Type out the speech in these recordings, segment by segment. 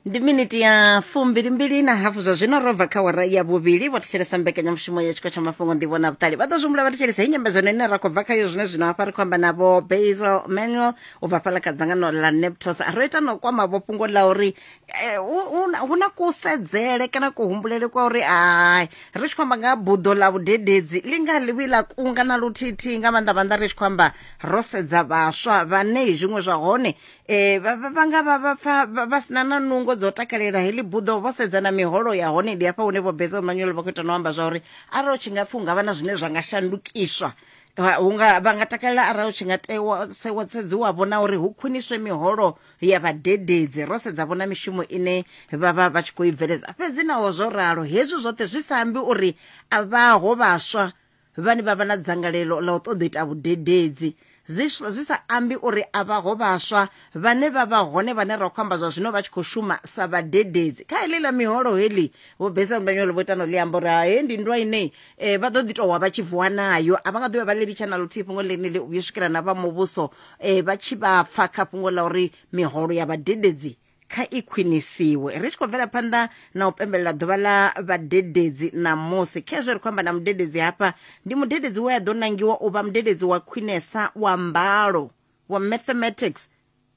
ndi miniti ya fumbilimbili na hafu zwa zwino ro bva kha wara ya vhuvhili vho thetshelesa mbekanyamushumo ya tshiko tsha mafhungo ndivho na vhuṱali vha ḓo zwimbula vha thetshelesa i nyambedzano ine ra khou bva khayo zwine zwino hafha ri khou amba navho basel manuel u bva fhala kha dzangano la neptos ro ita no kwama vho fhungo la uri eh, hu- hu na- hu na kusedzele kana kuhumbulele kwa uri ai ri tshi khou amba nga ha buḓo la vhudededzi ḽi nga ḽivhi ḽa kunga na luthithihi nga maanḓa maanḓa ri tshi khou amba ro sedza vhaswa vhane zwiṅwe zwa hone Eh, vha vha- vha nga vha vha pfa vha- vha sina na nungo dzo takalela heḽi buḓo vho sedza na miholo ya hone ndi hafha hune vho beza manyolo vha khou ita no amba zwa uri arali u tshi nga pfi hu nga vha na zwine zwa nga shandukiswa Vha- hu nga vha nga takalela arali u tshi nga tewa sewa sedziwa vhona uri hu khwiniswe miholo ya vhadededzi ro sedza vhona mishumo ine vha vha vha tshi khou i bveledza fhedzi naho zwo ralo hezwi zwoṱhe zwi sa ambi uri a vhaho vhaswa vhane vha vha na dzangalelo ḽa u ṱoḓa u ita vhudededzi zwi sa ambi uri a vhaho vhaswa vhane vha vha hone vhane ra khou amba zwa zwino vha tshi khou shuma sa vhadededzi kha heḽi ḽa miholo heḽi vho besa ndanyolo vho itano ḽi amba uri hae ndi nndwa ine um eh, vha ḓo ḓi towa vha tshi vuwa nayo a vha nga ḓovha vha ḽi litsha na luthihi fhungo ḽeneli u vhuyo swikela na vha muvhuso um vha tshi vha pfa kha fhungo ḽa uri miholo ya vhadededzi kha i khwinisiwe ri tshi khou bvela phanḓa na u pembelela ḓuvha ḽa vhadededzi ṋamusi khezwo ri khou amba na mudededzi hafha ndi mudededzi we a ḓo nangiwa u vha mudededzi wa khwinesa wa mbalo wa mathematics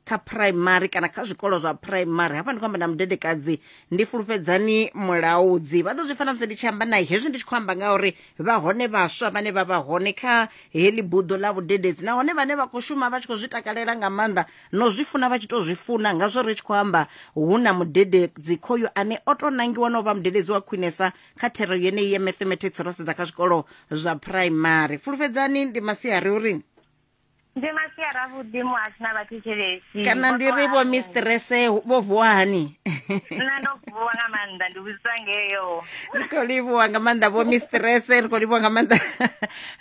kha phuraimari kana kha zwikolo zwa phuraimari hafha ndi khou amba na mudedekadzi ndi fulufhedzani mulaudzi vha ḓo zwi fana musi ndi tshi amba naye hezwi ndi tshi khou amba nga uri vha hone vhaswa vhane vha vha hone kha heḽi buḓo ḽa vhudededzi nahone vhane vha khou shuma vha tshi khou zwi takalela nga maanḓa no zwi funa vha tshi to zwi funa nga zwo ri tshi khou amba hu na mudededzi khoyu ane o to nangiwa no vha mudededzi wa khwinesa kha thero yeneyi ya mathematics ro sedza kha zwikolo zwa primary fulufhedzani ndi masiari uri ndi masiari avhuḓi muhasina vhathetshelesi kana ndi ri vho mistrese vho vuwa hani nṋe ndo vuwa nga maanḓa ndi vhudzisa ngeyo ri khou livhuwa nga maanḓa vho mistrese ri khou livhuwa nga maanḓa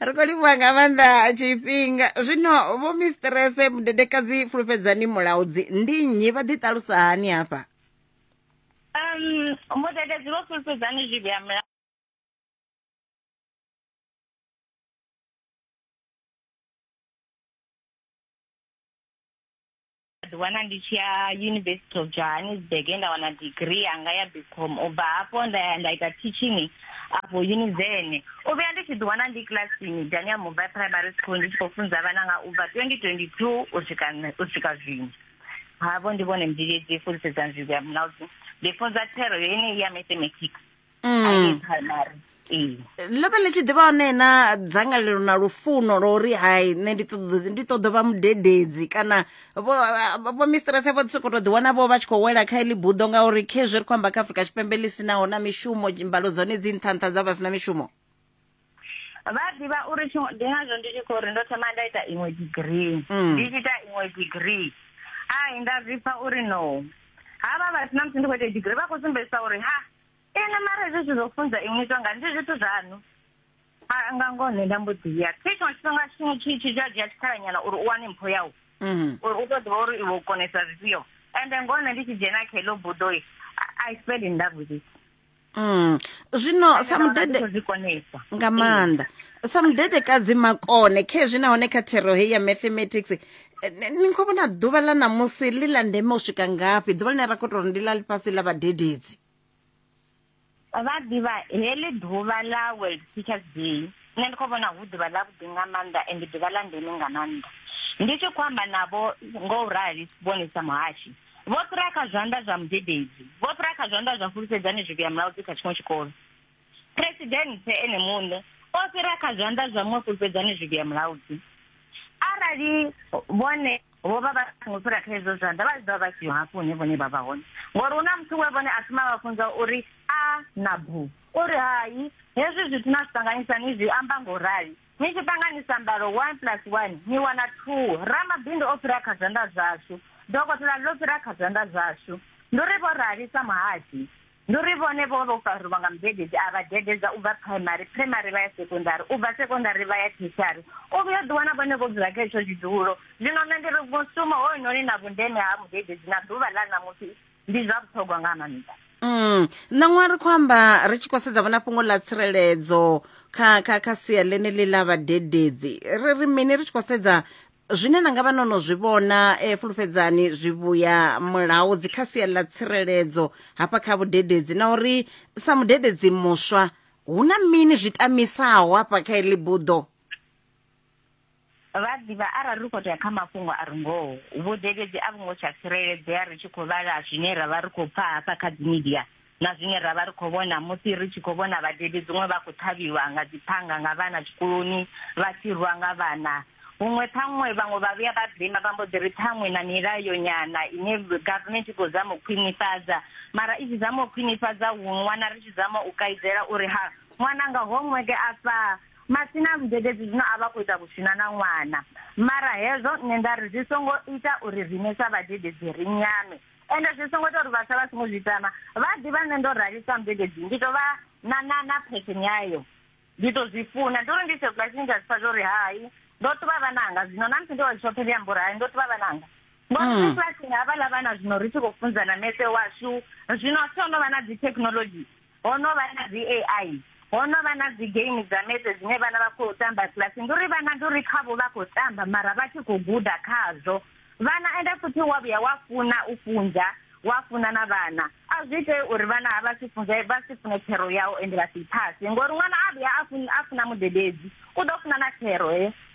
ri khou livhuwa nga maanḓa tshifhinga zwino vho mistrese mudedekadzi fulufhedzani mulaudzi ndi nnyi vha ḓiṱalusa hani hafha um mudededzi vho fulufhedzani zwivhi ha mulaudzi ḓiwana ndi tshi ya university of johannesburg e nda wana degree yanga ya bcom u bva hafho nda ya nda ita teaching afho univene u vhuya ndi tshi ḓiwana ndi kilasini dania mobile primary school ndi tshi khou funza vhana nga u bva 2022 u swika u swika zwino havho ndi vhone mdidedzi fulisedza nzivho ya munaldi ndi funza thero yo yeneyi ya mathematics mm. primary ee ḽo vha ḽi tshi ḓivha hone na dzangalelo na lufuno lwa uri hai nṋe ndi ṱoḓo ndi ṱoḓo vha mudededzi kana vho vho mistress vho soko to ḓi wana vho vha tshi khou wela kha iḽi buḓo ngauri khezwi ri khou amba kha afrika tshipembe ḽi sinaho na mishumo mbalo dzone dzi nṱha nṱha dza vha sina mishumo vha ḓivha uri ndi ngazwo ndi tshi khou ri ndo thoma nda ita iṅwe degree mm. ndi tshi ita iṅwe degree ai nda zwi pfa uri no havha vha sina musi ndi khou ita degree vha khou sumbedzisa uri ha ene mara hezwi zwithu zwo funza inwi zwa nga ndi zwithu zwaṋu a nga ngoho nṋe nda mbo ḓi ya thi tshiṅwe tshifhinga tshiṅwe tshi tshi zwa dzhia tshikhalanyana uri u wane mpho yau mhm. uri u to ḓivha uri iwe u konesa zwifhio ende ngoho nṋe ndi tshi dzhena kha heḽo budoi i fell in love with it Mm. Zwino sa mudede nga maanḓa sa mudedekadzi makone khezwi nahone kha thero heyi ya mathematics ni khou vhona ḓuvha ḽa ṋamusi ḽi ḽa ndeme u swika ngafhi ḓuvha ḽine ra khou tou ri ndi ḽa ḽifhasi ḽa vhadededzi vha ḓivha heḽi ḓuvha ḽa world teachers day nṋe ndi khou vhona hu ḓuvha ḽa vhuḓi nga maanḓa and ḓuvha ḽa ndeme nga maanḓa ndi tshi khou amba navho ngo u rali vhone sa muhashi vho fhira kha zwanḓa zwa mudededzi vho fhira kha zwanḓa zwa fulufhedzani zwivhuya mulaudzi kha tshiṅwe tshikolo Phresidennde ene muṋe o fhira kha zwanḓa zwa muṅwe fhulufhedzani zwivhi ya mulaudzi. Arali vhone vho vha vha songo fhira kha hezwo zwanḓa, vha tshi ḓo vha vha siho hafho hune vhone vha vha hone. Ngori hu na muthu we vhone a thoma a vha funza uri, A na bu? O ri, Hai, hezwi zwithu na zwi ṱanganisa ni zwi amba nga u rali. Ni tshi ṱanganisa mbalo one plus one ni wana thuu. Ramabindu o fhira kha zwanḓa zwashu. Dokotela ḽo fhira kha zwanḓa zwashu. Ndi uri vho rali sa muhadzi. Ndi uri vhone vho vha vho fariwa nga mudededzi a vha dededza u bva phuraimari, phuraimari vha ya sekondari, u bva sekondari vha ya theshiari. U vhuya u ḓiwana vhone vho dzula kha hetsho tshidulo. Zwino nṋe ndi ri mushumo hoyunoni na vhundeme ha mudededzi na ḓuvha ḽa ṋamusi ndi zwa vhuṱhogwa nga maanḓa. Mm, ṋaṅwaha ri khou amba ri tshi khou sedza vhona fhungo ḽa tsireledzo kha kha kha sia ḽeneḽi ḽa vhadededzi ri ri mini ri tshi khou sedza Zwine na nga vha no no zwi vhona, eh, fulufhedzani zwivhuya mulaho dzi kha sia ḽa tsireledzo hafha kha vhudededzi na uri sa mudededzi muswa hu na mini zwi tamisaho hafha kha iḽi buḓo. Vha ḓivha arali ri khou tea kha mafhungo a re ngoho, vhudededzi a vhu ngo tsha tsireledzea ri tshi khou vhala zwine ra vha ri khou pfa hafha kha dzi midia na zwine ra vha ri khou vhona musi ri tshi khou vhona vhadebi dziṅwe vha khou ṱhavhiwa nga dziphanga nga vhana tshikoloni vha tshi rwa nga vhana huṅwe ṱhaṅwe vhaṅwe vha vhuya vha blame vha mbo ḓi ri ṱhaṅwe na milayo nyana ine government i khou zama u khwinifhadza mara i tshi zama u khwinifhadza huṅwe wana ri tshi zama u kaidzela uri ha ṅwana nga homework afha masina vhudededzi zwino a vha khou ita vhusina na ṅwana mara hezwo nṋe nda ri zwi songo ita uri riṋe sa vhadededzi ri nyame ende zwi songo ita uri vhaswa vha songo zwi tama vha ḓivha nṋe ndo rali sa mbededzi ndi to vha na na na phetheni yayo ndi to zwi funa ndi uri ndi tshe bulasini nda zwipfa zwa uri hai ndo tuvha vhananga zwino na musi ndi wa zwishoṱhe ndi amba uri hai ndo tuvha vhananga ngori mm. bulasini havhaḽa vhana zwino ri tshi khou funzana mese washu zwino so no vha na dzi thekhinolodzhi ho no vha na dzi AI ho no vha na dzi game dza metse dzine vhana vha khou tamba class ndi uri vhana ndi uri khavho vha khou tamba mara vha tshi khou guda khazwo vhana ende futhi wa vhuya wa funa u funza wa funa na vhana a zwi ite uri vhana ha vha si funze vha si fune thero yau ende vha si phase ngori ṅwana a vhuya a funa a funa mudededzi u ḓo funa na thero he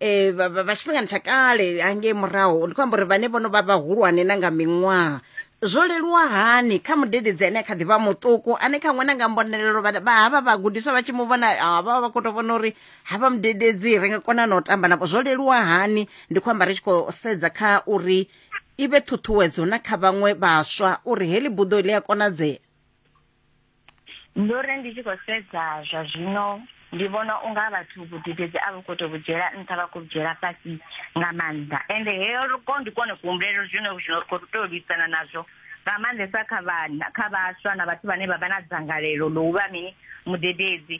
eh, vha- vha- vha tshifhingani tsha kale hangei murahu ndi khou amba uri vhane vhono vha vhahulwane na nga miṅwaha zwo leluwa hani kha mudededzi ane a kha ḓi vha muṱuku ane kha ṅwana nga mbonelelo vha- vha- havha vhagudiswa vha tshi mu vhona ah, vha vha vha khou tou vhona uri havha mudededzi ri nga kona na u tamba navho zwo leluwa hani ndi khou amba ri tshi khou sedza kha uri i vhe ṱhuṱhuwedzo na kha vhaṅwe vhaswa uri heḽi buḓo ḽi a konadzea ndo ri ndi tshi khou sedza zwa zwino ndi vhona unga vhathu vhudededzi a vho khou tou vhudzhiela nṱha vha khou vhudzhiela fhasi nga maanḓa ende heyo ko ndi kone kuhumbulelo zwino zwino ri khou tou lwisana nazwo nga maanḓesa kha vhana kha vhaswa na vhathu vhane vha vha na dzangalelo ḽo uvha mini mudededzi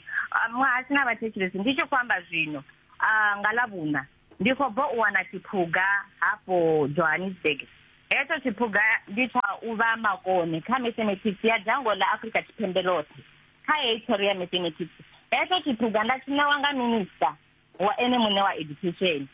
muhasi na vhathetshelesi ndi tshi khou amba zwino nga ḽa vhuna Ndi khou bva u wana tshiphuga hafho Johannesburg. Hetsho tshiphuga ndi tsha u vha makone kha Mathematics ya dzhango ḽa Afrika Tshipembe ḽoṱhe. Kha heyi thero ya Mathematics, hetsho tshiphuga nda tshi ṋewa nga Minisiṱa wa ene muṋe wa Education.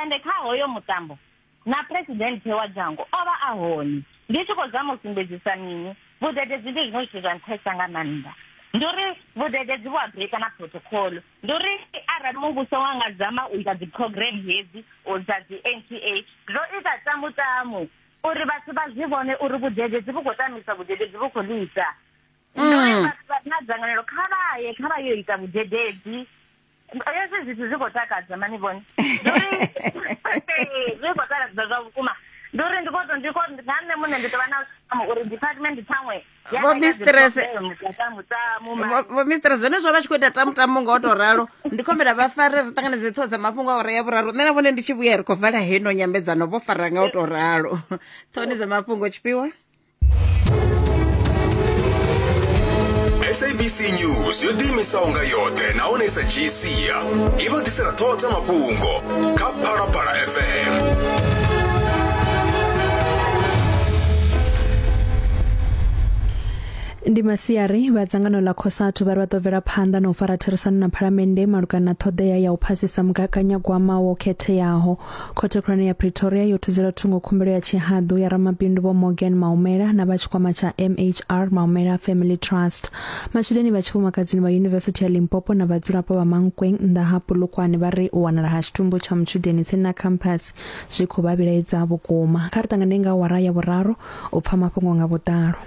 Ende kha hoyo mutambo, Na Phresidennde wa dzhango o vha a hone. Ndi tshi khou zama u sumbedzisa mini? Vhudededzi ndi zwiṅwe zwithu zwa nṱhesa nga maanḓa. Ndi uri vhudededzi vhu a brika na phurothokhoḽo. Ndi uri arali muvhuso wa nga zama u ita dziphurogiremu hedzi dza dzi-NTA zwo ita tamu-tamu uri vhathu vha zwi vhone uri vhudededzi vhu khou tamisa, vhudededzi vhu khou ḽisa. Ndi uri vhathu vha re na dzangalelo kha vha ye, kha vha yo ita vhudededzi. hezwi zwithu zwi khou takadza mani vhone zwi khou takadza zwa vhukuma ndi uri ndi khoto ndi khoto nga nṋe muṋe ndi tovha na tamo uri department ṱhaṅwe vho mistress vho mistress zwone zwo vha tshi khou ita tamu tamu nga o to ralo ndi khombela vha fare ri ṱanganedze ṱhoho dza mafhungo a ure ya vhuraru nṋe na vhone ndi tshi vhuya ri khou vala heno nyambedzano vho fara nga o to ralo ṱhohoni dza mafhungo tshifhiwa sabc news yo ḓiimisaho nga yoṱhe nahone sa dzhii sia i vha ḓisela ṱhoho dza mafhungo kha phalaphala fm ndi masiari vha dzangano ḽa cosatu vha ri vha ḓo bvela phanḓa na u fara therisano na phalamennde malugana na ṱhoḓea ya u phasisa mugaganyagwama wo khetheaho Khothe khulwane ya Pretoria yo thudzelwa thungo khumbelo ya tshihaḓu ya ramabindu vho Morgan Maumela na vha tshikwama tsha MHR Maumela Family Trust. Matshudeni vha tshifumakadzini vha Yunivesithi ya Limpopo na vhadzulapo vha Mankweng nnḓa ha Polokwane vha ri u wanala ha tshitumbu tsha mutshudeni tsini na campus zwi khou vha vhilaedza vhukuma. Kha ri ṱangane nga awara ya vhuraru u pfa mafhungo nga vhuḓalo.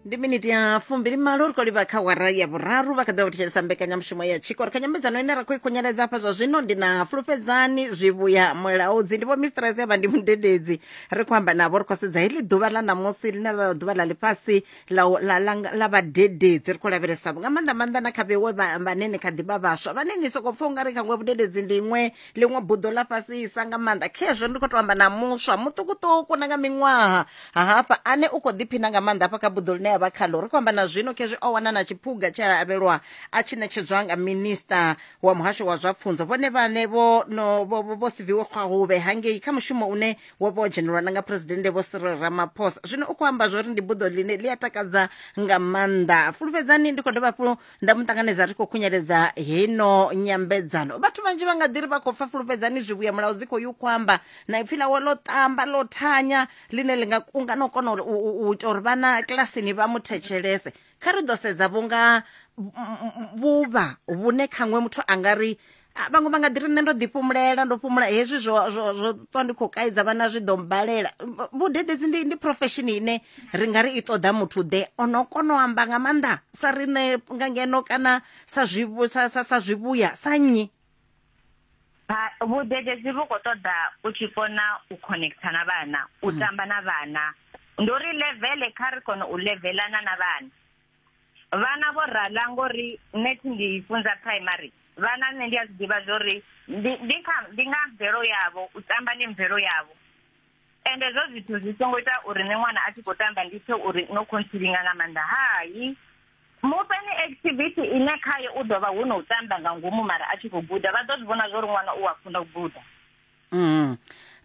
ndi miniti ya fumbili malo ri khou livha kha wara ya vhuraru vha kha ḓi vha thetshelesa mbekanyamushumo ya tshiko ri kha nyambedzano ine ra khou i khunyeledza hafha zwa zwino ndi na fulufhedzani zwivhuya mulaudzi ndi vho mistress yavha ndi mudededzi ri khou amba navho ri khou sedza heḽi ḓuvha ḽa ṋamusi ḽine ḽa ḓuvha ḽa ḽifhasi la u- la- la- la vhadededzi ri khou lavhelesa nga maanḓa maanḓa na kha vhewe vha- vhane ni kha ḓi vha vhaswa vhane ni sokou pfha ungari khaṅwe vhudededzi ndi iṅwe ḽiṅwe buḓo ḽa fhasisa nga maanḓa khezwo ndi khou tou amba na muswa muṱukuṱuku na nga miṅwaha ha hafha ane u khou ḓiphina nga maanḓa hafha kha buḓo ḽine ya vha khalo ri khou amba na zwino khezwi o wana na tshiphuga tshe a avhelwa a tshi ṋetshedzwa nga minista wa muhasho wa zwa pfunzo vhone vhaṋe vho no vho vho siviwe khwahuvhe hangei kha mushumo une wo vha o dzhenelwa na nga phuresidennde vho Cyril Ramaphosa zwino u khou amba zwori ndi buḓo ḽine ḽi a takadza nga maanḓa fulufhedzani ndi khou dovha hafhu nda mu ṱanganedza ri khou khunyeledza heino nyambedzano vhathu vhanzhi vha nga ḓi ri vha khou pfa fulufhedzani zwivhuya mulayo dzi khou yo kwamba na ipfi ḽawe ḽo ṱamba ḽo thanya ḽine ḽi nga kunga na u kona uri- u u- u ita uri vhana kilasini vha mu thetshelese kha ri ḓo sedza vhunga m- m- vhuvha vhune khaṅwe muthu a nga ri Ah, vhaṅwe vha nga ḓiri nṋe ndo ḓi fhumulela ndo fhumula hezwi zwo zwo ṱwa ndi khou kaidza vhana zwi ḓo mbalela vhudededzi ndi ndi profession ine ri nga ri i ṱoḓa muthu ḓe ono kona u amba nga maanḓa sa riṋe nga ngeno kana sa zwi sa zwivhuya sa nnyi vhudededzi vhu khou ṱoḓa u tshi kona u connecta na vhana u mm. tamba na vhana ndo ri levele kha ri kone u levelana na vhana vhana vho rala ngori nṋe thi ndi funza primary vhana nṋe ndi a zwi ḓivha zwo ri ndi kha ndi nga mvelo yavho u tamba ndi mvelo yavho ende zwo zwithu zwi songo ita uri nṋe ṅwana a tshi khou tamba ndi pfhe uri no khontsilinga nga maanḓa hai mufhe ni activity ine khaye u ḓo vha hu no u tamba nga ngomu mara a tshi khou guda vha ḓo zwi vhona zwo ri ṅwana u a funa u guda mm.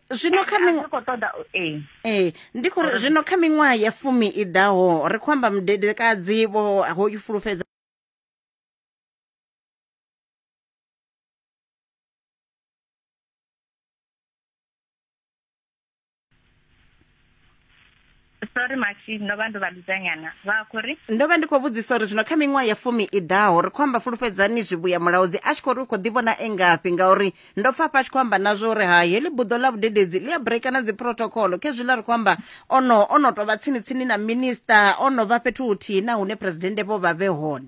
zwino kha ee eh, ndi khou zwino kha miṅwaha ya fumi i ḓaho ri khou amba mudedekadzi vho ho i fulufhedza sorry mashi ndo vha ndo vha ludzanyana vha khou ri ndo vha ndi khou vhudzisa uri zwino kha miṅwaha ya fumi i ḓaho ri khou amba fulufhedzani zwivhuya mulaudzi a tshi khou ri u khou ḓivhona e ngafhi ngauri ndo pfa hafha a tshi khou amba na zwo uri ha heḽi buḓo ḽa vhudededzi ḽi a breaka na dziprotocolo khezwiḽa ri khou amba ono ono tovha tsini tsini na minista ono vha fhethu huthihi na hune presidennde vho vha vhe hone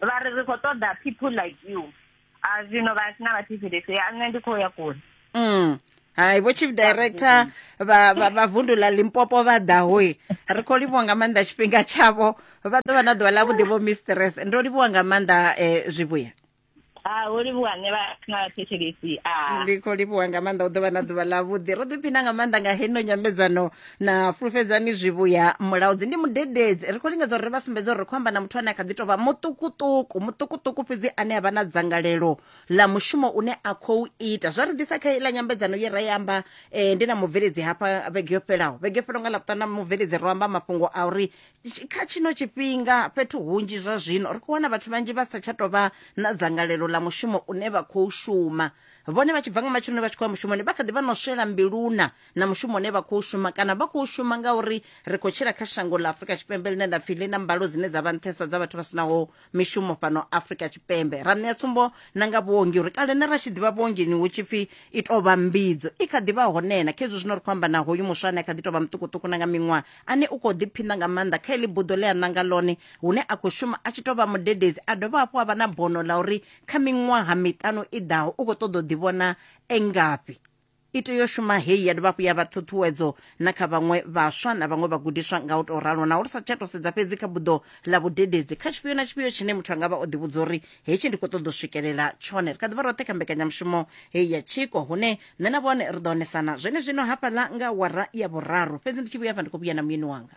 vha ri ri khou ṱoḓa people like you a zwino vha sina vha thivhelese ya nṋe ndi khou ya kule mm. hai vho chief director vha vundu ḽa limpopo vha ḓahoi ri khou livhuwa nga maanḓa tshifhinga tshavho vha ḓo vha na ḓuvha ḽa vhuḓi vho mistress ndo livhuwa nga maanḓa um zwivhuya Ah, ho livhuwa nṋe vha na thetshelesi ah. ndi khou livhuwa nga maanḓa u ḓo vha na ḓuvha ḽa vhuḓi ro ḓiphina nga maanḓa nga heno nyambedzano na fulufhedzani zwivhuya mulaudzi ndi mudededzi ri khou lingedza uri ri vha sumbedze uri ri khou amba na muthu ane a kha ḓi tou vha muṱukuṱuku muṱukuṱuku fhedzi ane a vha na dzangalelo ḽa mushumo une a khou ita zwa ri ḓisa kha iḽa nyambedzano ye ra i amba eh, ndi na mubveledzi hafha vhege yo fhelaho vhege yo fhelaho nga ḽapuṱanu na mubveledzi ro amba mafhungo a uri tshi- kha tshino tshifhinga fhethu hunzhi zwa zwino ri khou wana vhathu vhanzhi vha sa tsha tou vha na dzangalelo ḽa mushumo une vha khou shuma vhone vha tshi bva nga matsheloni vha tshi khou ya mushumoni vha kha ḓi vha no swela mbiluna na mushumo une vha khou shuma kana vha khou shuma ngauri ri khou tshila kha shango ḽa afurika tshipembe ḽine nda pfi ḽi na mbalo dzine dza vha nṱhesa dza vhathu vha sinaho mishumo fhano afurika tshipembe ra ṋea tsumbo na nga vhuongi uri kale ne ra tshi ḓivha vhuongini hu tshi pfi i tou vha mbidzo i kha ḓivha honena kha hezwi zwino ri khou amba na hoyu muswa ane a kha ḓi tou vha muṱukuṱuku na nga miṅwaha ane u khou ḓiphina nga maanḓa kha heḽi buḓo ḽe a ṋanga ḽone hune a khou shuma a tshi tou vha mudededzi a dovha hafhu a vha na bono ḽa uri kha miṅwaha miṱanu i ḓaho u khou ṱoḓa u ḓivhona engafhi I tea u shuma hei ya dovha hafhu ya vha ṱhuṱhuwedzo na kha vhaṅwe vhaswa na vhaṅwe vhagudiswa nga u tou ralo, naho ri sa tsha tou sedza fhedzi kha buḓo ḽa vhudededzi kha tshifhio na tshifhio tshine muthu a nga vha o ḓivhudza uri hetshi ndi khou ṱoḓa u swikelela tshone. Ri kha ḓi vha roṱhe kha mbekanyamushumo hei ya tshiko, hune nṋe na vhone ri ḓo onesana zwenezwino hafhaḽa nga awara ya vhuraru. Fhedzi ndi tshi vhuya afha ndi khou vhuya na muyeni wanga.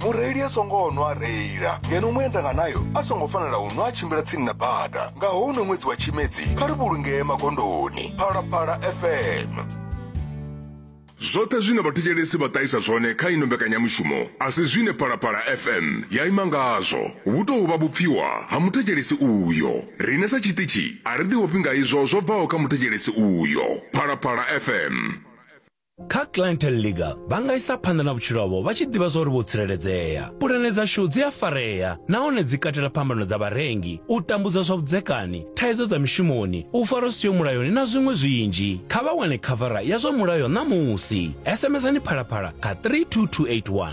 mureili a songo nwa a reila ngeno muendanganayo a songo fanela u nwa a tshimbila tsini na bada nga houno ṅwedzi wa tshimedzi kha ri vhulungee magondoni phalaphala fm zwoṱhe zwine vhathetshelesi vha ṱahisa zwone kha ino mbekanyamushumo a si zwine phalaphala fm ya ima ngazwo vhu tou vha vhupfiwa ha muthetshelesi uyo riṋe sa tshiṱitshi a ri ḓivhofhi nga izwo zwo bvaho kha muthetshelesi uyo phalaphala fm Kha Clientele Legal, vha nga isa phanḓa na vhutshilo havho vha tshi ḓivha zwa uri vho tsireledzea. Pulane dzashu dzi a farea nahone dzi katela phambano dza vharengi, u tambudzwa zwa vhudzekani, thaidzo dza mishumoni, u farwa zwi siho mulayoni na zwiṅwe zwinzhi. Kha vha wane khavara ya zwa mulayo ṋamusi. SMSani Phalaphala kha 32281.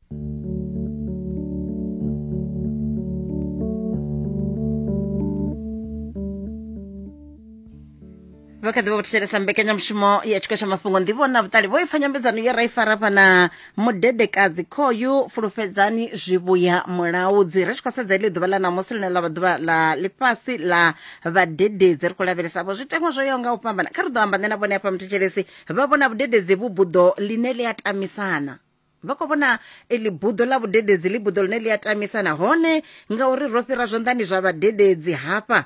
vha kha ḓi vha vho thetshelesa mbekanyamushumo ya tshiko tsha mafhungo ndivho na vhuṱali vho ipfa nyambedzano ye ra i fara fhana mudedekadzi khoyu fulufhedzani zwivhuya mulaudzi ri tshi khou sedza iḽi ḓuvha ḽa ṋamusi ḽine ḽa vha ḓuvha ḽa ḽifhasi ḽa vhadededzi ri khou lavhelesa vho zwiteṅwa zwo yaho nga u fhambana kha ri ḓo amba nṋe na vhone hafha muthetshelesi vha vhona vhudededzi vhu buḓo ḽine ḽi a tamisana Vha khou vhona eḽi buḓo ḽa vhudededzi ḽi buḓo ḽine ḽi a tamisa nahone ngauri ro fhira zwanḓani zwa vhadededzi hafha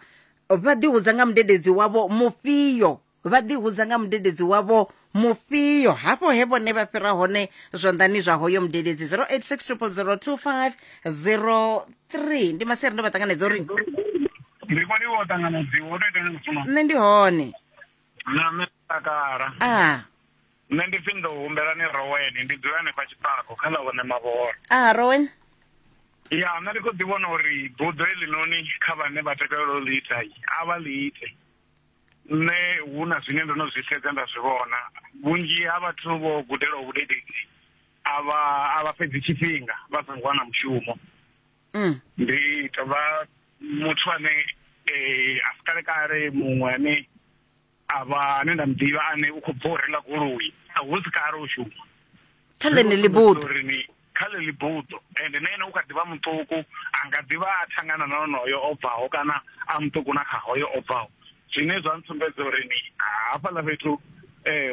vha ḓihudza nga mudededzi wavho mufhio vha ḓihudza nga mudededzi wavho mufhio hafho he vhone vha fhira hone zwanḓani zwa hoyo mudededzi 0860002503 ndi maseri ndo vha ṱanganedza uri ndi kho livho ṱanganedziwa u to ita ni mufuno nṋe ndi hone na nṋe takala ah Nṋe ndi pfi ndo humbela ni Rowen, ndi dzula hanefha Tshifhako kha ḽa vhone Mavhoro. Aha, Rowen. Ya, nṋe ndi khou ḓi vhona uri buḓo heḽinoni kha vhane vha takalela u ḽi ita a vha ḽi ite. Nṋe hu na zwine ndo no zwi sedza nda zwi vhona, vhunzhi ha vhathu vho gudelaho vhudededzi a vha a vha fhedzi tshifhinga vha songo wana mushumo. Mm. Ndi tovha muthu ane eh, a si kale kale muṅwe ane A vha ane nda mu ḓivha ane u khou bva u renga goloi a hu si kale u shuma kha ḽeneḽi buḓo kha ḽeḽi buḓo ende na ene u kha ḓivha muṱuku a nga ḓivha a thangana na onoyo o bvaho kana a muṱuku na kha hoyo o bvaho zwine zwa ntsumbedza uri ni hafhaḽa fhethu um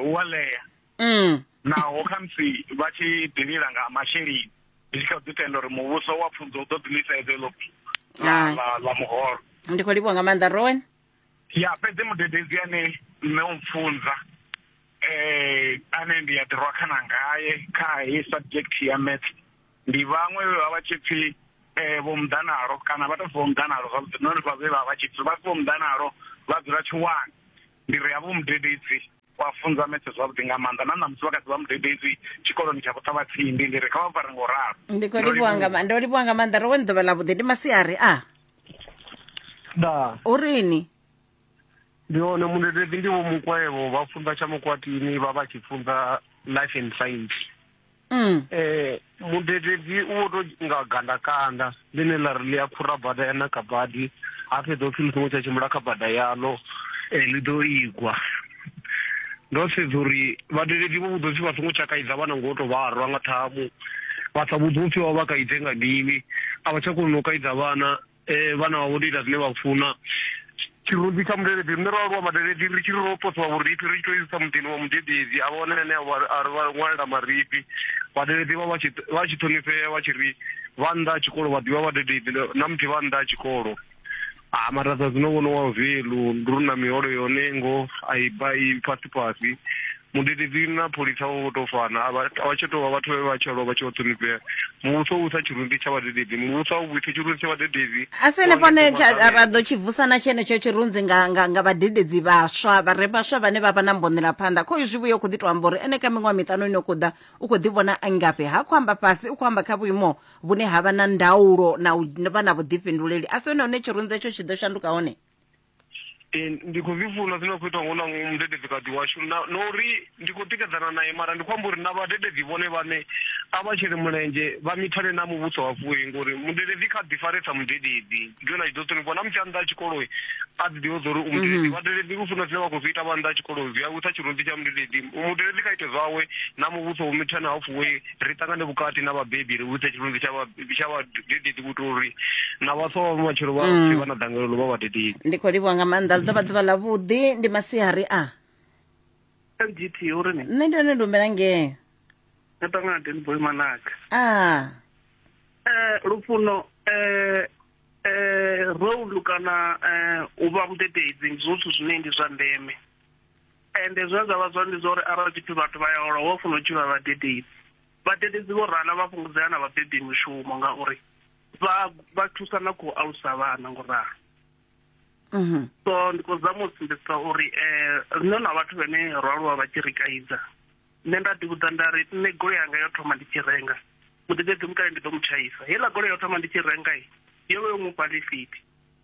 hu a ḽea mm. naho khamusi vha tshi ḓilila nga masheleni ndi tshi kha ḓi tenda uri muvhuso wa pfunzo u ḓo ḓiliseza iḽo ḽa muholo ndi khou livhuwa nga maanḓa rowen ya fhedzi mudededzi ane nṋe u mpfunza eh ane ndi ya ḓirwa khana ngaye kha he subject ya maths ndi vhaṅwe vhe vha vha tshi pfi eh vho muḓanalo kana vha tou pfi vho muḓanalo zwavhuḓi nori vha vhe vha vha tshi pfi vha pfi vho muḓanalo vha dzula tshiwani ndi ri havho mudededzi wa funza maths zwavhuḓi nga maanḓa na ṋamusi vha kha ḓi vha mudededzi tshikoloni tsha vhuṱhavhatsindi ndi ri kha vha mpfare ngo ralo ndi khou livhuwa nga ma- ndo livhuwa nga maanḓa ro wani ḓuvha ḽa vhuḓi ndi masiari a da o rini ndi hone munebebi ndi vho mukwevho vha funza tsha mukwatini vha vha tshi funza life and science mm. eh mudedebi u vho to nga gandakanda ḽine ḽa ri ḽi a khura bada ya naka badi ha fhedza u pfi ḽi songo tsha tshimbila kha bada yaḽo um ḽi ḓo igwa ndo sedza uri vhadededzi vho vhudzwa upfi vha songo tsha kaidza vhana ngo to vha rwa nga ṱhamu vha sa vhudzwa upfi vha vha kaidze nga mini a vha tsha koni no kaidza vhana um vhana vha vho ndo ita zwine vha funa tshirunzi tsha mudededzi rine ro aluwa vhadededzi ri tshi ri ro posiwa vhurifhi ri tshi to isa muḓini wa mudededzi a vha wane ane a ri vha ṅwalela marifhi vhadededzi vha vha tshi ṱhonifhea vha tshi ri vha nnḓa ha tshikolo vha ḓivha vhadededzi na muthihi vha nnḓa ha tshikolo Ah, mara zwa zwino vhono wa velu ndi ri na miholo yone ngo a i ba i fhasi fhasi mudededzi na pholisa vho to fana a vha a vha tsha tou vha vhathu vhe vha tsha lwa vha tshi vho ṱhonifhea muvhuso u vhusa tshirunzi tsha vhadededzi muvhuso a u vhuise tshirunzi tsha vhadededzi a si henefho ne tsha- ra ra ḓo tshi vusa na tshenetsho tshirunzi nga, nga, nga vhadededzi vhaswa vha re vhaswa vhane vha vha na mbonela phanḓa kho izwi vhuyo khou ḓi tou amba uri ene kha miṅwaha miṱanu ino khou ḓa u khou ḓi vhona a ngafhi ha khou amba fhasi u khou amba kha vhuimo vhune ha vha na ndaulo na u vha na vhuḓifhinduleli a si hone hune tshirunzi etsho tshi ḓo shanduka hone ee ndi khou zwi funa zwine khou ita ngo na mudededzi kati washu na uri ndi khou tikedzana naye mara ndi khou amba uri na vhadededzi vhone vhane a vha tshele mulenzhe vha mithane na muvhuso wa vhuyi ngori mudededzi kha ḓi faresa mudededzi ndi yone a tshi ḓo ṱhonifhiwa na musi a nnḓa a tshikolo a ḓi ḓivha uri umudededzi mm-hmm. vhadededzi u funa zwine vha khou zwi ita vha nnḓa a tshikolo zwi a wisa tshirunzi tsha mudededzi mudededzi kha ite zwawe na muvhuso wo mithane ha fuwe ri ṱangane vhukati na vhabebi ri vhudze tshivhunzi tsha vhadededzi vhuto uri na vhaswa vha matshelo vha mm. pfe vha na dangelelo vha vhadededzi ndi khou livhuwa nga maanḓa ḽi ḓo vha ḓuvha ḽavhuḓi ndi masihari a ngt uri ni nṋe ndi one ndumela ngee no ṱangana denboy manaka a eh, lufuno um eh, role kana eh, u vha mudededzi ndi zwithu zwine ndi zwa ndeme ende zwine zwa vha zwone ndi zwa uri arali tshipfi vhathu vha ya hola hu a funa u tshi vha vhadededzi vhadededzi vho rala vha fhungudzea na vhabebi mushumo ngauri vha vha thusa na khou alusa vhana ngo ralo mhm. so ndi khou zama u sumbedzisa uri um riṋe na vhathu vhane ro aluwa vha tshi ri kaidza nṋe nda ḓivhudza nda ri nṋe golo yanga yo thoma ndi tshi renga mudededzi mukale ndi ḓo mu tshaisa heiḽa golo yo thoma ndi tshi renga yo vha yo mu fha lifiti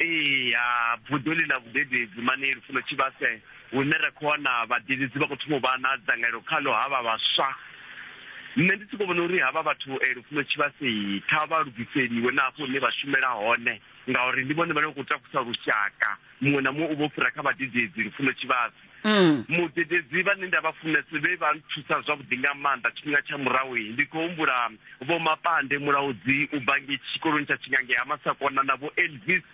Ee, ha vhuḓoli ḽa vhudededzi mani lufuno tshivhase hune ra khou wana vhadededzi vha khou thoma u vha na dzangalelo khaḽo havha vhaswa. Nṋe ndi sokou vhona uri havha vhathu eh, lufuno tshivhase kha vha lugiseliwe na hafho hune vha shumela hone ngauri ndi vhone vhane vha khou takusa lushaka. Muṅwe na muṅwe u vha u fhira kha vhadededzi lufuno tshivhase. Mm. mudededzi vhane nda vha funesa vhe vha nthusa zwavhuḓi nga maanḓa tshifhinga tsha murahu ndi khou humbula vho mapande mulaudzi u bva nge tshikoloni tsha tshingange ha masakona na vho elvis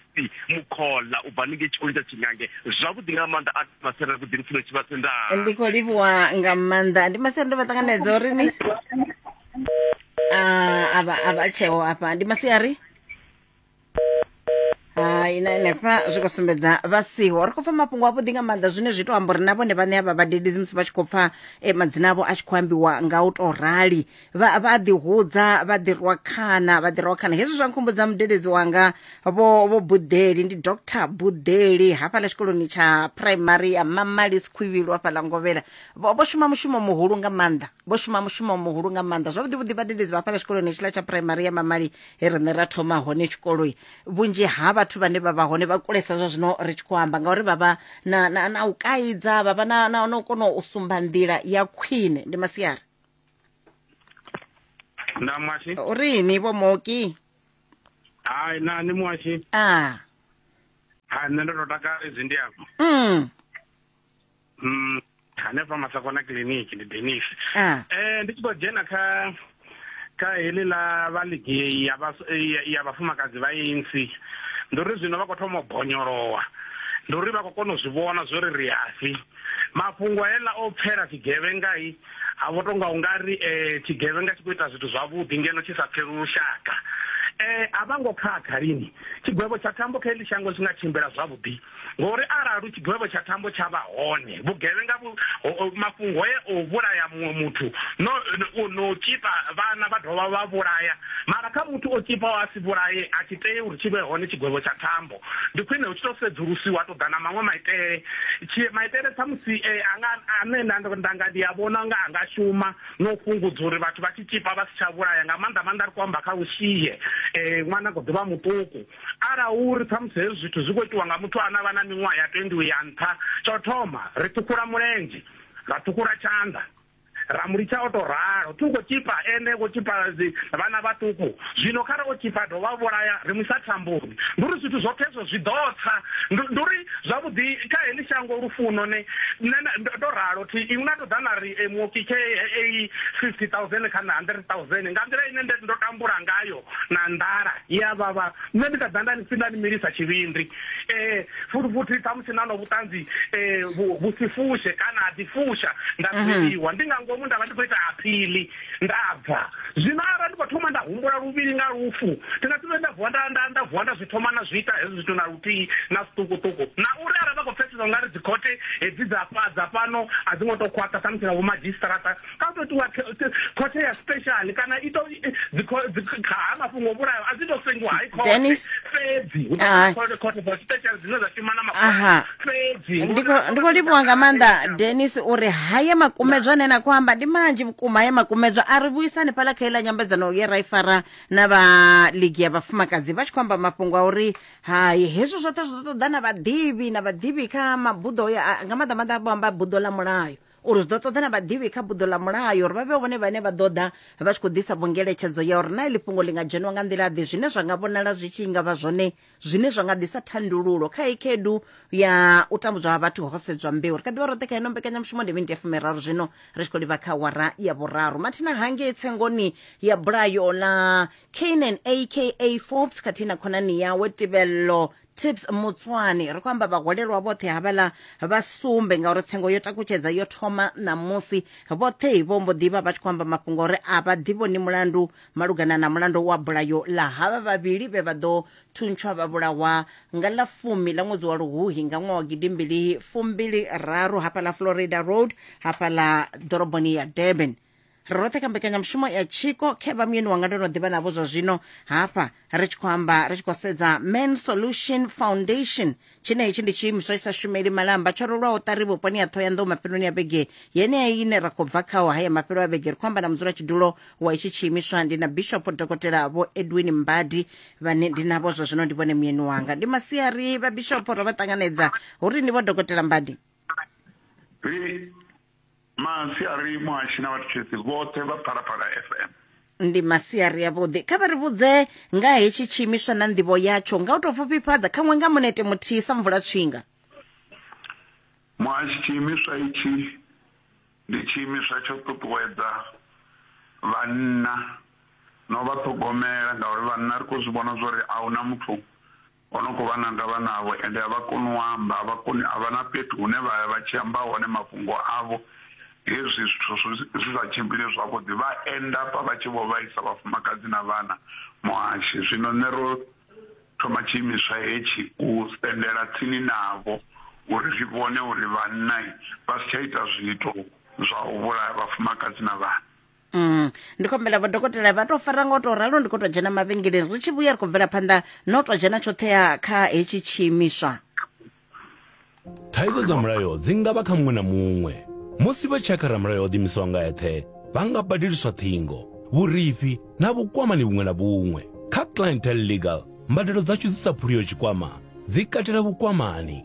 mukhola u bva ninge tshikoloni tsha tshingange zwavhuḓi nga maanḓa a masere vhuḓi lufuno tshi vha sendaa ndi khou livhuwa nga maanḓa ndi masere ndo vha ṱanganedza uri ni ah, a vha a vha tsheo afha ndi masiari hai na henefha zwi khou sumbedza vha siho ri khou pfa mafhungo avhuḓi nga maanḓa zwine zwi to amba uri na vhone vhaṋe avha vhadededzi musi vha tshi khou pfa eh, madzina avho a tshi khou ambiwa nga u tou rali vha vha ḓihudza vha ḓirwa khana vha ḓirwa khana hezwi zwa nkhumbudza mudededzi wanga vho vho buḓeli ndi dr buḓeli hafhaḽa tshikoloni tsha primary ya mamalis khwivhilo hafhaḽa ngovhela vho vho shuma mushumo muhulu nga maanḓa vho shuma mushumo muhulu nga maanḓa zwavhuḓi vhuḓi vhadededzi vha hafhaḽa tshikoloni hetshiḽa tsha primary ya mamali he riṋe ra thoma hone tshikoloi vhunzhi ha vhathu vhane vha vha hone vha kulesa zwa zwino ri tshi khou amba ngauri vha vha na, na, na u kaidza vha vha na, na, na u kona u sumba nḓila ya khwine ndi masiari nda mwashi u ri ni vho moki hai na ni mwashi a ha nṋe ndo to takala izwi ndi afho mm. mm, hanefha masakona kiliniki ndi denis ah. eh, ndi tshi khou dzhena kha kha heḽi ḽa vha ligi ya ya vhafumakadzi vha insi ndi uri zwino vha khou thoma u bonyolowa ndi uri vha khou kona u zwi vhona zwo ri ri asi mafhungo heḽa o pfela tshigevhengai ha vho tonga u nga ri um tshigevhenga tshi khou ita zwithu zwavhuḓi ngeno tshi sa pfeli lushaka um a vha ngo khakha lini tshigwevho tsha thambo kha heḽi shango tshi nga tshimbila zwavhuḓi Ngauri arali tshigwevho tsha thambo tsha vha hone, vhugevhenga vhu, mafhungo haya o vhulaya muṅwe muthu no, no, no tzhipa vhana vha dovha vha vhulaya, mara kha muthu o tzhipaho a si vhulaye a tshi tei uri tshi vhe hone tshigwevho tsha thambo. Ndi khwine hu tshi tou sedzulusiwa ha tou ḓa na maṅwe maitele. Tshi, maitele khamusi e, a nga, ane nda, nda nga ndi a vhona nga a nga shuma na u fhungudza uri vhathu vha tshi tzhipa vha si tsha vhulaya, nga maanḓa maanḓa ri khou amba kha u shie e, ṅwana a kha ḓi vha muṱuku. Arali hu uri ṱhamusi hezwi zwithu zwi khou itiwa nga muthu ane a vha na miṅwaha ya 20 u ya nṱha, tsha u thoma ri ṱhukhula mulenzhe, ra ṱhukhula tshanḓa, ra mu litsha o tou ralo. Thi u khou tzhipa ene, vho tzhipa vhana vhaṱuku. Zwino kha re o tzhipa a dovha a vhulaya, ri mu isa thamboni. Ndi uri zwithu zwoṱhe hezwo zwi ḓo tsa. Ndi, ndi uri zwavhuḓi kha heḽi shango lufuno ne, ne na, ndo, ndo ralo thi, inwi na tou ḓa na ri e, muoki khei 50,000 kha nṋe 100,000 nga nḓila ine nde ndo tambula ngayo na nḓala ye a vhavha, nṋe ndi kha ḓa nda ni si nda ni milisa tshivhindi. Futhi-futhi ṱhamusi na nwa vhuṱanzi vhu si fushe kana ha ḓi fusha nda fheliwa ndi nga ngomu nda vha ndi khou ita aphili nda bva. Zwino arali ndi khou thoma nda humbula luvhili nga lufu, thi nga si vhuye nda vuwa nda nda vuwa nda zwi thoma na zwi ita hezwo zwithu na luthihi na zwiṱukuṱuku. Na uri arali vha khou pfesesa u nga ri dzikhothe hedzi dza fha dza fhano a dzi ngo tou khwaṱha ṱhamusi na vhomadzhisiṱaraṱa, kha u tou tiwa khothe ya special kana i to ha mafhungo vhulayo a dzi to sengiwa hai khothe fhedzi khothe for special dzine dza shuma na mafhungo fhedzi ndi khou livhuwa nga maanḓa denis uri haya makumedzwa ane na khou amba ndi manzhi vhukuma haya makumedzwa a ri vhuisani phala kha iḽa nyambedzano ye ra i fara na vha ligi ya vhafumakadzi vha tshi khou amba mafhungo a uri hai hezwo zwoṱhe zwi ḓo ṱoḓa na vhaḓivhi na vhaḓivhi kha mabuḓo nga maanḓa maanḓa vho amba buḓo ḽa mulayo uri zwi ḓo ṱoḓa na vhaḓivhi kha buḓo ḽa mulayo uri vha vhe vhone vhane vha ḓo ḓa vha tshi khou ḓisa vhongeletshedzo ya uri na iḽi fhungo ḽi nga dzheniwa nga nḓila-ḓe zwine zwa nga vhonala zwi tshi nga vha zwone zwine zwa nga ḓisa thandululo kha i khaedu ya u tambudzwa ha vhathu ho sedzwa mbeu ri kha ḓivha roṱhe kha ino mbekanyamushumo ndi miniti ya fumiraru zwino ri tshi khou livha kha wara ya vhuraru mathina hangei tsengoni ya bulayo ḽa canan aka forbes khathihi na khonani yawe tibello tips mutswani ri khou amba vhaholelwa vhoṱhe havhala vha sumbe ngauri tsengo yo takutshedza yo thoma ṋamusi vhoṱhe vho mbo ḓivha vha tshi khou amba mafhungo uri a vha ḓivhoni mulandu malugana na mulandu wa bulayo ḽa havha vhavhili vhe vha ḓo thuntshwa vha vhulawa nga ḽa fumi ḽa ṅwedzi wa luhuhi nga ṅwaha wa gidimbili fumbili raru hafhaḽa florida road hafhaḽa ḓoroboni ya durban roṱhe kha mbekanyamushumo ya tshiko khevha muyeni wanga ndo no ḓivha navho zwa zwino hafha ri tshi khou amba ri tshi khou sedza man solution foundation tshine hetshi ndi tshiimiswa i sa shumeli malamba tsho rolwaho ṱari vhuponi ya ṱhohoyanḓou mafheloni ya vhege yeneya ine ra khou bva khaho haya mafhelo a vhege ri khou amba na mudzulatshidulo wa itshi tshiimiswa ndi na bishop dokotela vho edwin mbadi vhane ndi navho zwa zwino ndi vhone muyeni wanga ndi masiari vha bishop ro vha ṱanganedza uri ndi vho dokotela mbadi masiari muhashi na vhathetshelesi vhoṱhe vha phalaphala fm ndi masiari avhuḓi kha vha ri vhudze nga hetshi tshiimiswa na nḓivho yatsho nga u tou pfufhifhadza khaṅwe nga munete muthihi sa mvula tswinga muhashi tshiimiswa itshi ndi tshiimiswa tsho ṱuṱuwedza vhanna no vha ṱhogomela ngauri vhanna ri khou zwi vhona zwo ri a hu na muthu Vhanukho vha na ndavha navho ende a vha koni u amba, a vha koni, a vha na fhethu hune vha ya vha tshi amba hone mafhungo avho. Hezwi zwithu zwi sa tshimbili zwavhuḓi, vha enda hafha vha tshi vho vhaisa vhafumakadzi na vhana. Muhashi, zwino nṋe ro thoma tshiimiswa hetshi u sendela tsini navho uri ri vhone uri vhanna vha si tsha ita zwiito zwa u vhulaya vhafumakadzi na vhana. Mm. ndi khou humbela vhadokotela vha tou fara nga u tou ralo ndi khou tou dzhena mavhengeleni ri tshi vhuya ri khou bvela phanḓa na u tou dzhena tshoṱhe ya kha hetshi tshiimiswa Thaidzo dza mulayo dzi nga vha kha muṅwe na muṅwe. Musi vha tshi ya kha ramulayo o ḓiimisaho nga eṱhe, vha nga badeliswa ṱhingo, vhurifhi na vhukwamani vhuṅwe na vhuṅwe. Kha Clientele Legal, mbadelo dzashu dzi sa phuliho tshikwama dzi katela vhukwamani,